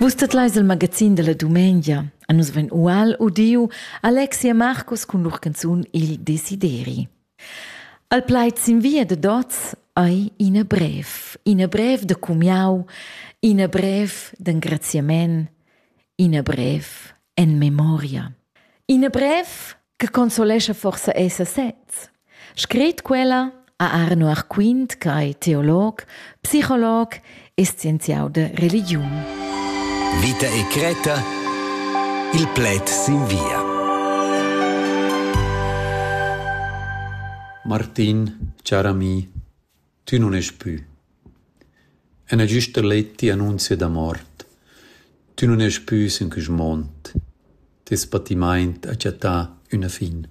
Vus tet leis il magazin della dumengia. A nus vegn ual udiu Alexia Marcus cun lur canzun Il Desideri. Al plaid sin via de Dots ei ina brev, ina brev de cumiau, ina brev d'engraziament, ina brev en memoria. Ina brev che consolescha forsa esser sez. Scret quella a Arno Arquint, che è teolog, psicolog e scienziau de religiun. Vita e Creta, il pled sin via. Martin, car ami, Tü nun est pü. Üna güsta letta annunzia da mort. Tü nun est pü sün quist mond. Teis patimaint ha chattà üna fin.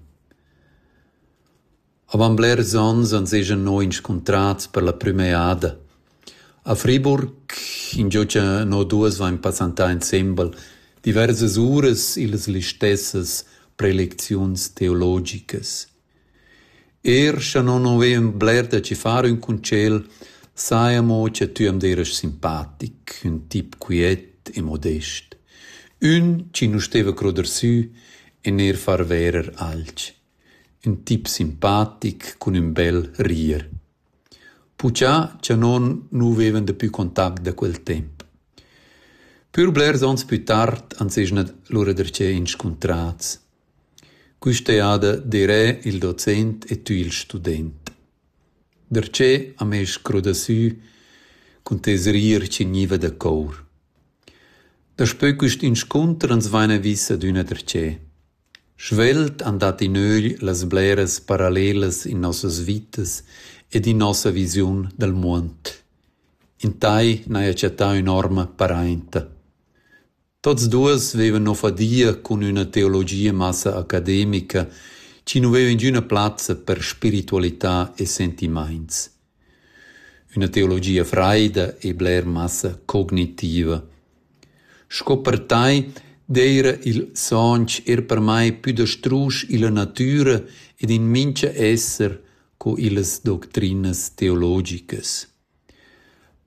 Avant blers ons ans esa no inscuntrats per la prüma eada. A Friburg, ingio cha no duos vain passantà insembel, diversas uras illas listessas prelecziuns teologicas. Er scha non ho eun bler da chi far ün concel, saja amo cha tü am deras simpatic, ün tip quiet e modest. Ün chi nu steva cruder sü e neir far verer alch. Ün tip simpatic cun ün bel rir. Puchà cha non nu vevan dapü contact da quel temp. Pür blers ons plü tard ans esa lura darcheu inscuntrats. Quista eada d'eirè il docent e tü il student. Darcheu am ais scrodasü cun tes rir chi gniva da cour. Daspö quist inscunter ans vaina vis adüna darcheu. Svelt han dat in ögl las bleras parallelas in nossas vitas ed in nossa visiun dal muond. In tai n'haja chattà ün'orma parainta. Tots duos vevan no fadia cun üna teologia massa academica chi nu veva ingüna plazza per spiritualità e sentimaints. Üna teologia fraida e bler massa cognitiva. Sco per tai d'eira il sonch eir per mai pü da strusch illa natüra ed in mincha esser co illas doctrinas teologicas.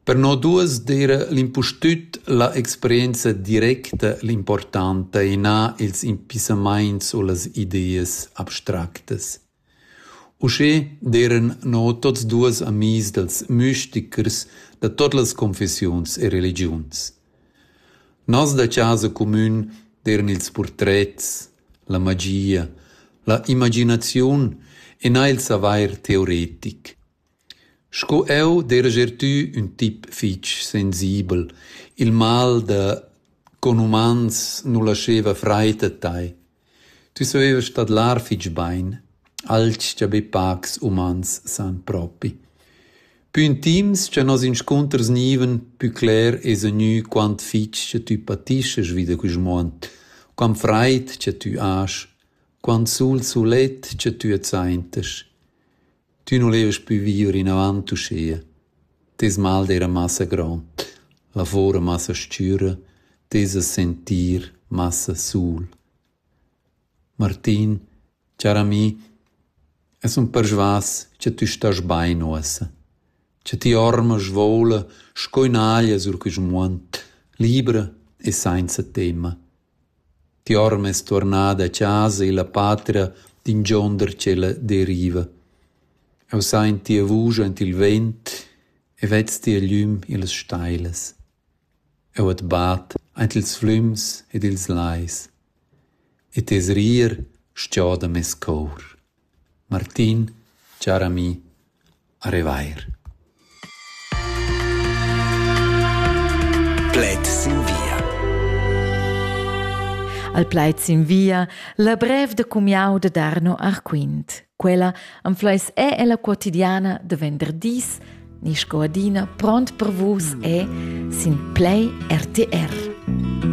Per no duos d'eira l'impustüt la experienza directa l'importanta e na ils impissamaints u las ideas abstractas. Uschè d'eiran no tuots duos amis dals müstichers da tuot las confessiuns e religiuns. Nos da chasa cumün d'eiran ils purtrets, la magia, la imaginaziun e na il savair teoretic. Sco jeu dereger tü ün tip fich sensibel: il mal da conumans nu lascheva fraid a tai. Tü savevast tadlar fich bain, alch cha be pacs umans san propi. Pü intims cha nos inscunters gnivan, pü cler esa gnü quant fich cha tü patischast vi da quist muond, quant fraid cha tü hast, quant sul sulet cha tü adsaintast. Tü nu levast pü vier inavant uschia. Teis mal d'eira massa grond, lavor massa s-chüra, teis sentir massa sul. Martin, char ami, es ün persvas cha tü stast bain uossa, cha ti orma svoula sco ün'aglia sur quist muond, libra e sainza temma. Tiorm es tuornada a chasa illa patria d'ingionder tschella deriva. Eu saint tia vusch aint il vent e vez tia glüm illas stailas. Eu at bat aint ils flüms ed ils lais e tes rir schioda meis cour. Martin, char ami, a revair. Plaid sin via. Al plaid sin via, la brev da cumiau da Darno Arquint. Quella am fleis è ella quotidiana da venderdis, ni sco adina pront per vus è sin Play RTR.